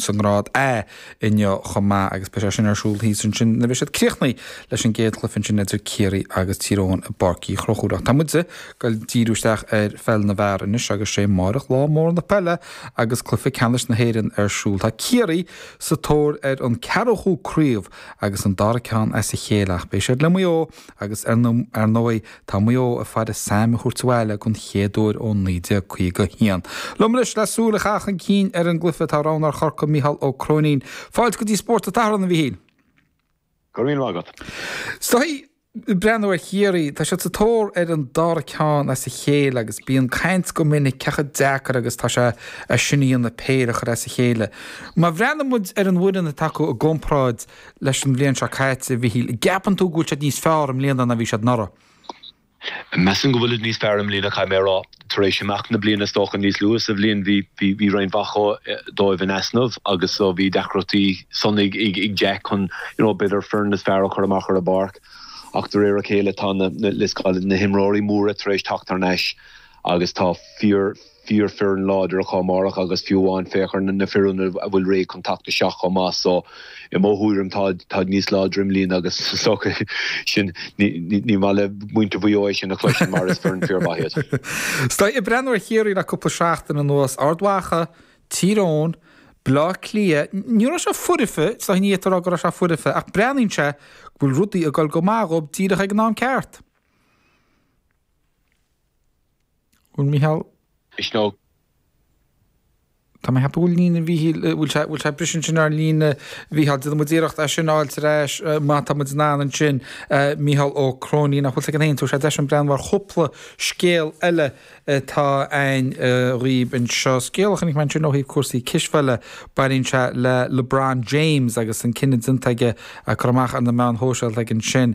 sa ngrád A inniu chomh maith agus beidh sé sin ar siúl thíos ansin nuair a bheidh siad críochnaithe leis an gcéad chluiche ansin idir Ciarraí agus Tír Eoghain i bPáirc Uí Chonchúir. Ach tá muid ag díriú isteach ar pheil na bhfear anois agus sé amáireach lá mór na peile agus cluiche ceannais na hÉireann ar siúl. Tá Ciarraí sa tóir ar an ceathrachadú craobh agus an dara ceann as a chéile ach beidh siad le Maigh Eo agus ar ndóigh Tá Maigh Eo ag faire Sam a thabhairt abhaile den chéad uair ó 1951. Liom anois le súil a chaitheamh chun cinn ar an gcluiche tá roghnóir Chorcaí, Micheál Ó Cróinín. Fáilte go dtí Spórt an tSathairn, a Mhichíl. Go raibh míle maith agat. Is dóigh, ag breathnú ar Chiarraí, tá siad sa tóir ar an dara ceann as a chéile agus bíonn caint go minic cé chomh deacair agus atá sé é sin a dhéanamh, péire a chur as a chéile. Má bhreathnaíonn muid ar an bhfoireann atá acu i gcomparáid leis an bhliain seo caite, a Mhichíl. An gceapann tú go bhfuil siad níos fearr i mbliana ná a bhí siad anuraidh? Measaim go bhfuilid níos fearr i mbliana, caithfidh mé a rá. Tar éis imeacht na bliana, is dócha, níos luaithe sa bhliain, bhí bhí roinnt mhaith dóibh in easnamh agus so bhí deacrachtaí san ag ag Jack chun you know b'fhéidir an fhoireann is fearr a chur amach ar an bpáirc ach de réir a chéile tá na let's call it na himreoirí móra tar éis teacht thar n-ais agus tá fíor fíorfhoireann láidir acu amárach agus fiú amháin féach ar na na fir ionaid a bhfuil réidh chun teacht isteach chomh maith so i mo thuairim táid táid níos láidre i mbliana agus so sin ní ní ní maith le muintir Mhaigh Eo é sin a chloisint mar is foireann fíormhaith iad. Is dóigh ag breathnú ar Chiarraí le cúpla seachtain anuas Ard Mhacha, Tír Eoghain, Bleá Cliath ní raibh sé foirfe so ní fhéadfá a rá go raibh sé foirfe ach breathnaíonn sé go bhfuil rudaí ag dul go maith dhóib díreach ag an am ceart. Bhfuil Micheál. Misneach. Tá mé ag ceapadh go bhfuil líne Mhíchíl, bhfuil sé, bhfuil sé briseadh ansin ar líne Mhíchíl. Déanfaidh muid iarracht é sin a fháilt ar ais má tá muid in ann ansin. Micheál Ó Cróinín, nach bhfuil sé againn, tabharfaidh sé deis dúinn breathnú ar chúpla scéal eile atá againn dhaoibh anseo. Scéal a chonaic mé ansin ó thaobh cúrsaí cispheile, baineann sé le LeBron James agus an cinneadh déanta aige a chur amach ar na meáin shóisialta aige ansin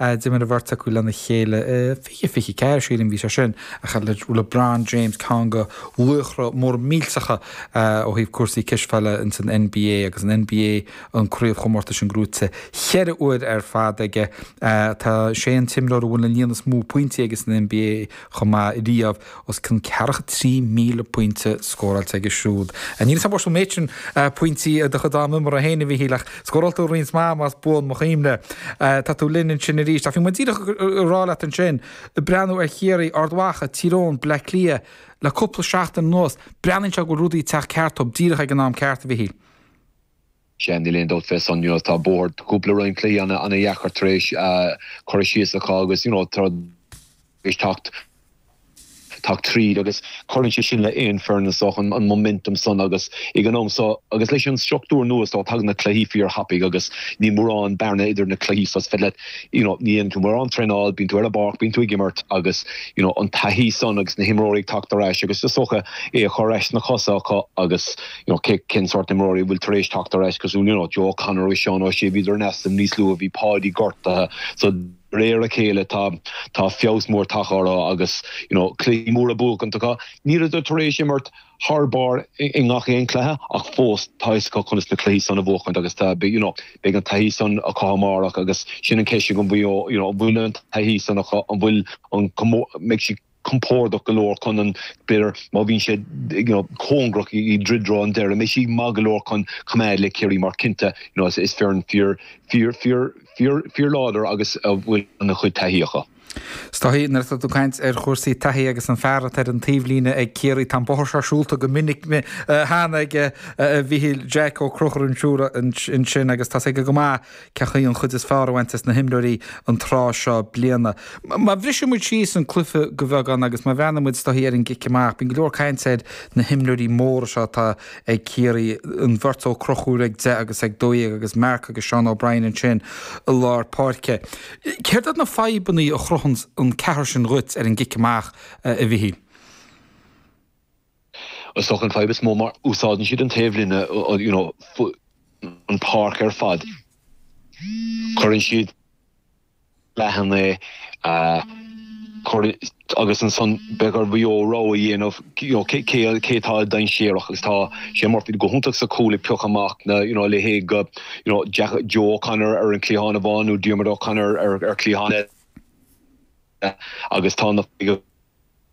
d'imir an bheirt acu lena chéile i 2024, sílim, bhí sé sin ach LeBron James ceann de laochra móra millteacha ó thaobh cúrsaí cispheile in san NBA agus an NBA an craobhchomórtas sin gnóite cheithre uair ar fad aige. Tá sé an t-imreoir a bhfuil an líon is mó pointí aige san NBA chomh maith riamh. os cionn ceathracha trí míle pointe scóráilte aige siúd. Níl a fhios agam an bhfuair tú an méid sin pointí i do chuid ama imeartha féin, a Mhichíl, ach scóráil tú roinnt maith, más buan mo chuimhne. Tá tú linn ansin arís. Ach bhí muid díreach ag rá leat ansin, ag breathnú ar Chiarraí, Ard Mhacha, Tír Eoghain, Baile Átha Cliath le cúpla seachtain anuas, breathnaíonn sé go bhfuil rudaí ag teacht ceart dóibh díreach ag an am ceart, a Mhichíl. Sea, níl aon dabht fé san, you know, tá bóthar cúpla roinnt cluichí ana, ana dheacair tar éis cur síos acu agus, you know, tar éis tacht, tacht tríd agus cuireann sé sin le aon foireann is dócha, an momentum san agus ag an am so agus leis an structúr nua so, tagann na cluichí fíor thapaidh agus níl mórán bearna idir na cluichí so is féidir leat, you know, ní dhéanann tú mórán traenáil, bíonn tú ar an bpáirc, bíonn tú ag imirt agus, you know, an taithí san agus na himreoirí ag tacht ar ais agus is dócha é a chur ar ais sna cosa acu agus. you know cé cén sórt imreoirí a bhfuil tar éis teacht ar ais cosúil le you know, Joe O'Connor agus Seán Ó Sé, bhíodar in easnamh níos luaithe, bhí Páidí gortaithe. So, de réir a chéile tá tá feabhas mór tagtha orthu agus you know cluichí móra buachaint acu. Níleadar tar éis imirt thar barr i ngach aon cluiche ach fós tá fhios acu conas na cluichí san a bhuachaint agus tá you know beidh an taithí san acu amárach agus sin an ceist agam faoi you know an bhfuil an taithí san acu, an bhfuil an mbeidh siad compordach go leor chun an, b'fhéidir, má bhíonn sé you know cóngarach i dtreo dtreo an deireadh, mbeidh siad maith go leor chun coimeád le Ciarraí mar cinnte you know is is foireann fíor fíor fíor fíor fíor láidir agus a bhfuil ana chuid taithí acu. Is dóichí, nuair atá tú ag caint ar chúrsaí taithí agus an fear atá ar an taobhlíne ag Ciarraí, tá an bóthar seo siúlta go minic cheana aige, a Mhichíl, Jack Ó Conchúir ar an stiúir ansin agus tá fhios aige go maith Cén chaoi an chuid is fearr a bhaint as na himreoirí an tráth seo bliana. Má bhriseann muid síos an cluiche de bheagán agus má bhreathnaíonn muid is dóichí ar an gcic amach, bíonn go leor cainte ar na himreoirí móra seo atá ag Ciarraí, an bheirt Ó Conchúir ag deich agus ag dó dhéag agus Mark agus Seán O'Brien ansin i lár páirce. Céard iad na fadhbanna a chruthaíonn an ceathrar sin dhuit ar an gcic amach, a Mhichíl? Is dócha an fadhb is mó mar úsáideann siad an taobhlíne, you know, an páirc ar fad. Cuireann siad leathan é agus ansan beidh ar Mhaigh Eo rogha a dhéanamh, you know, cé cé atá dainséarach agus tá Shane Murphy go hiontach sa cúl ag pioc amach na, you know, a leithéid de, you know, Jack, Joe O'Connor ar an cliathán amháin nó Diarmuid O'Connor ar cliathán eile agus tá na.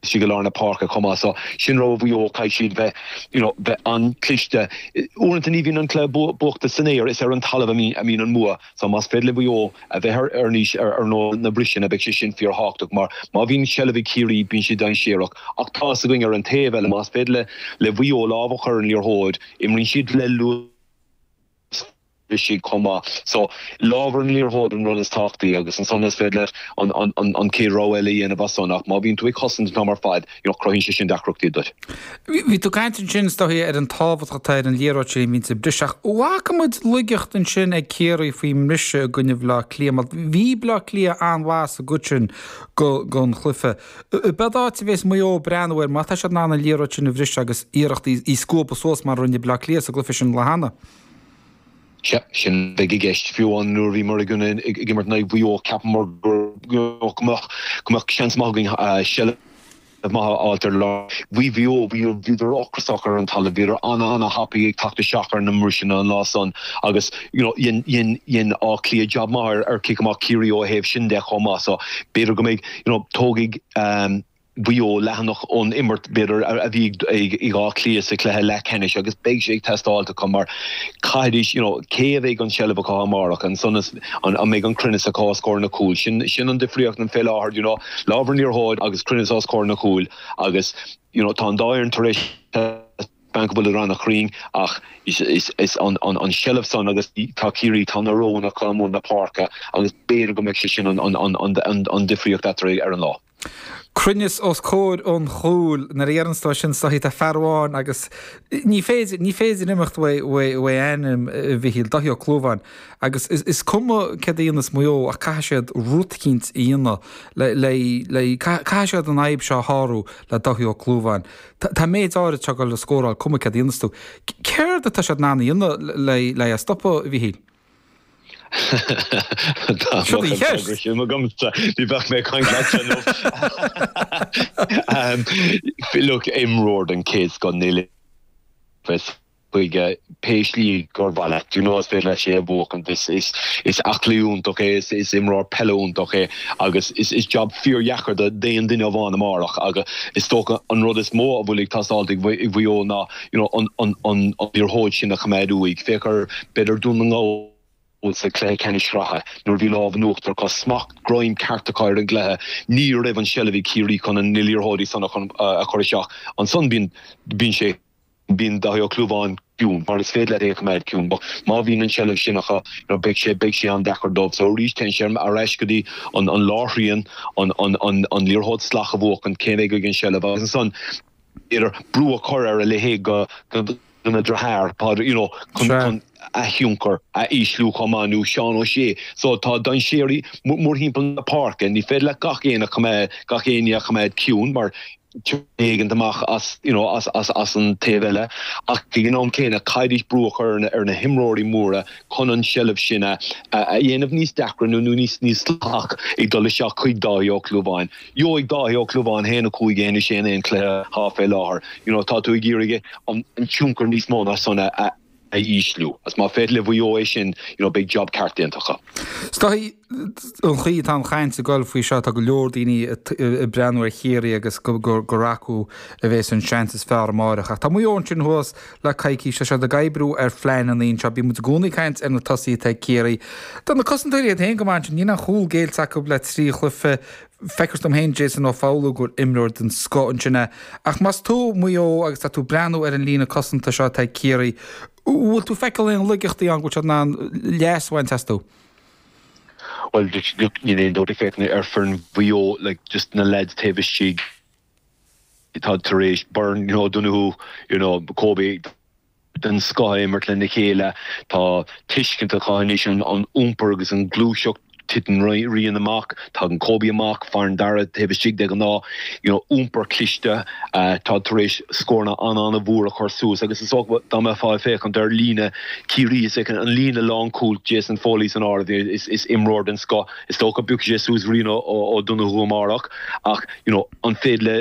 istigh i lár na páirce chomh maith so sin rud do Mhaigh Eo caithfidh siad bheith you know bheith an-chliste uaireanta ní bhíonn an clui bua buachta san aer is ar an talamh a mbíonn a mbíonn an mbua so más féidir le Mhaigh Eo a bheith ar ar aníos ar ar you know na briseanna beidh sé sin fíorthábhachtach mar má bhíonn seilbh ag Ciarraí bíonn siad dainséarach ach tá fhios againn ar an taobh eile más féidir le le Mhaigh Eo lámh a chur ar an liathróid imríonn siad le luas chomh maith, So, lámh ar an liathróid an rud is tábhachtaí agus ansan is féidir leat an an chéad rogha eile a dhéanamh as san ach má bhíonn tú ag cosaint an t-am ar fad, you know, cruthaíonn sé sin deacrachtaí duit. Bhí tú ag caint ansin, is dóichí, ar an tábhacht atá ar an liathróid sin a bhíonn ag briseadh ach bhfaca muid laigeacht ansin ag Ciarraí faoin mbriseadh i gcoinne Bhaile Átha Cliath mar bhí Baile Átha Cliath an-mhaith sa gcuid sin den chluiche. B'fhéidir áit a bhéas Maigh Eo ag breathnú air má tá siad in ann an liathróid sin a bhriseadh agus iarracht í a scuabadh suas mar a rinne Bleá Cliath sa gcluiche sin cheana. Sea, sin a bheidh i gceist. Fiú amháin nuair a bhíomar ag imirt in aghaidh Mhaigh Eo, cheapamar go mbeadh seans maith againn seilbh maith a fháilt ar lár. Bhí Mhaigh Eo, bhíodar ocrasach ar an talamh, bhíodar an-an-thapaidh ag teacht isteach ar na mbriseanna an lá san agus dhein Áth Cliath jab maith ar chic amach Chiarraí ó thaobh sin de chomh maith. So b'fhéidir go mbeidh. Tógfaidh Mhaigh Eo leathanach ón imirt, b'fhéidir, a bhí ag Áth Cliath sa chluiche leathcheannais agus beidh sé ag teastáilt acu mar caithfidís, you know, cé a bheidh an tseilbh acu amárach, ansan is, an mbeidh an cruinneas acu os comhair na cúil? Sin, sin an difríocht an fé láthair, you know, lámh ar an liathróid agus cruinneas os comhair na cúil agus, you know, tá an dá fhoireann tar éis Spáint go bhfuil siad an-chruinn ach is an seilbh san agus tá Ciarraí, tá na roghanna acu mór na páirce agus b'fhéidir go mbeidh sé sin an difríocht eatarthu ar an lá. Cruinneas os comhair an chúil. Nuair a dheireanns tú é sin is dóichí tá fear amháin agus ní féidir, ní féidir imeacht uaidh ainm, a Mhichíl, Dáithí Ó Clúmháin agus is cuma céard a dhéanfas Maigh Eo ach caithfidh siad rud eicínt a dhéanamh le, le, le, caithfidh siad an fhadhb seo a shárú le Dáithí Ó Clúmháin. Tá an méid áirid seo le scóráil cuma céard a dhéanfas tú. Céard atá siad in ann a dhéanamh le é a stopadh, a Mhíchíl? Bhí bheith mé chuin fi imreoir an céad go nile chuige pé slí gur mhaith leat. Do you know, is féidir leis é a bhuacaint. Is, is, is aclaí iontach é, is, is imreoir peile iontach é agus is, is jab fíordheacair do, d'aon duine amháin amárach agus is dócha an rud is mó a bhfuil ag teastáilt ag, ag Mhaigh Eo ná, you know, an, an, an, an liathróid sin a choimeád uaidh. Féach ar, b'fhéidir Dún na nGall sa chluiche ceannais sraithe nuair a bhí lámh in uachtar acu, smacht, greim ceart acu ar an gcluiche, ní raibh an tseilbh ag Ciarraí chun an, na liathróidí san a chur, a chur isteach. Ansan bíonn, bíonn sé. Bíonn Dáithí Ó Clúmháin ciúin mar is féidir leat é a choimeád ciúin, ach má bhíonn an tseilbh sin acu, beidh sé beidh sé an-deacair dóibh. So arís, téann sé ar ais go dtí an an lárthrian, an an an an liathróid salach a bhuachan, cé a bheidh ag an tseilbh agus ansan iarraidh brú a chur ar a leithéid go go dona dheartháir, Paudie, you know, chun Sure. chun a thionchar a ísliú chomh maith nó Seán Ó Sé. So tá dainséirí mórthimpeall na páirce. Ní féidir leat gach aon a choimeád gach éinne a choimeád ciúin mar treoir éigin amach as you know as an taobh eile ach ag an am céanna caithfidís brú a chur ar na himreoirí móra chun an seilbh sin a a dhéanamh níos deacra nó nó níos níos salach ag dul isteach chuig Dáithí Ó Clúmháin gheobhaidh Dáithí Ó Clúmháin haon a cúig anois in aon cluiche thá fé láthair you know tá tú ag iarraidh an tionchar níos mó ná san a a ísliú. Is má féidir le Mhaigh Eo é sin, you know, beidh job ceart déanta acu. Stoith, an chaoi atá an chaint ag dul faoi seo, tá go leor daoine ag breathnú ar Chiarraí agus gur acu a bheas an seans is fearr amárach. Ach tá Maigh Eo ansin thuas le coicís, tá siad ag oibriú ar phlean an Aoin seo. Bíonn muid i gcónaí ag caint ar na tosaithe atá ag Ciarraí. Tá na cosantóirí iad féin go maith ansin, níl aon chúl géillte acu le trí chluiche. Feicthear dom féin Jason Ó Foghlú gur imreoir den scoth ansin é. Ach más tú Maigh Eo agus tá tú breathnú ar an líne cosanta seo atá ag Ciarraí, an bhfuil tú feiceáil aon laigeachtaí ann go bhfuil siad in ann leas a bhaint astu? Bhuel, níl aon dabht ag féachaint ar foireann Mhaigh Eo, just na leaids taobh istigh atá tar éis Beirne, you know, Donoghue, you know, Kobe, den scoth a imirt lena chéile. Tá tuiscint acu anois an iompar agus an ghluaiseacht. Titeann Ryan amach, tagann Kobe amach, faireann Dara taobh istigh de ghnáth. You know, iompar cliste. Táid tar éis scóranna an-an-mhór a chur suas agus is dócha dá mbeifeá ag féachaint ar líne Chiarraí istigh an líne lánchúil, Jason Foley san áireamh, is imreoir den scoth. Is dócha go bpiocfaidh sé suas Ryan O'Donoghue amárach ach, you know, an féidir le.